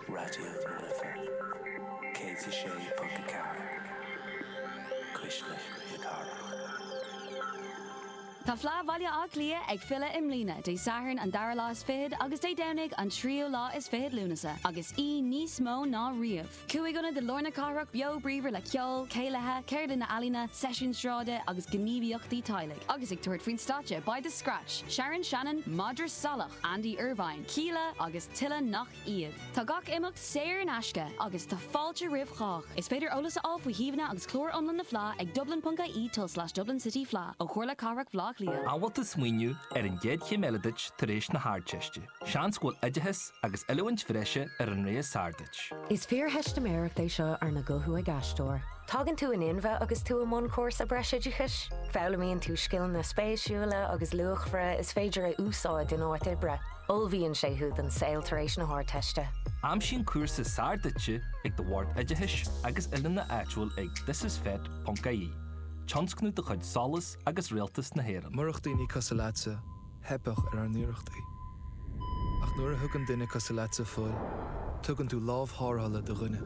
Raidió na Life 106.4, Cuisle na Cathrach. Tá Fleadh Bhaile Átha Cliath ag filleadh i mbliana, Dé Sathairn an dara lá is fichead agus Dé Domhnaigh an tríú lá is fichead Lúnasa, agus í níos mó ná riamh. Cúig ionad i lár na cathrach beo bríomhar le ceol, céilithe, ceardlanna ealaíne, seisiúin sráide agus gníomhaíochtaí teaghlaigh, agus ag tabhairt faoin stáitse beidh The Scratch, Sharon Shannon, Madra Salach, Andy Irvine, Kíla agus tuilleadh nach iad. Tá gach imeacht saor in aisce agus tá fáilte roimh chách. Is féidir eolas a fháil faoi shuíomhanna agus clár iomlán na fleá ag dublin.ie tilde slash Dublin City Fleadh ó Chomhairle Cathrach Bhleá Cliath. An bhfuil tú ag smaoineamh ar an gcéad chéim eile duit tar éis na hArdteiste. Seans go bhfuil oideachas agus oiliúint bhreise ar an rogha is fearr duit. Is fíortheistiméireacht é seo arna guthú ag aisteoir. Tagann tú in inmhe agus tú i mbun cúrsa breisoideachais. Foghlaimíonn tú scileanna spéisiúla agus luachmhara is féidir a úsáid in áit oibre. Ullmhaíonn sé thú don saol tar éis na hArdteiste. Aimsigh an cúrsa is fearr duitse ag do Bhord Oideachais agus Oiliúna áitiúil ag ThisIsFET.ie, tionscnamh de chuid Solas agus Rialtas na hÉireann. Murach daoine cosúil leatsa. theipeadh ar ár n-iarrachtaí. Ach nuair a thugann duine cosúil leatsa fuil, tugann tú lámh tharrthála do dhuine.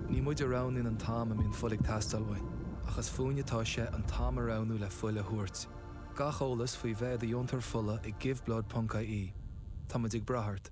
Ní muid a roghnaíonn an t-am a mbíonn fuil ag teastáil uainn, ach is fúinn atá sé an t-am a roghnú le fuil a thabhairt. Gach eolas faoi bheith i do dheontóir fola ag Give Blood Ponc IE. Tá muid ag brath ort.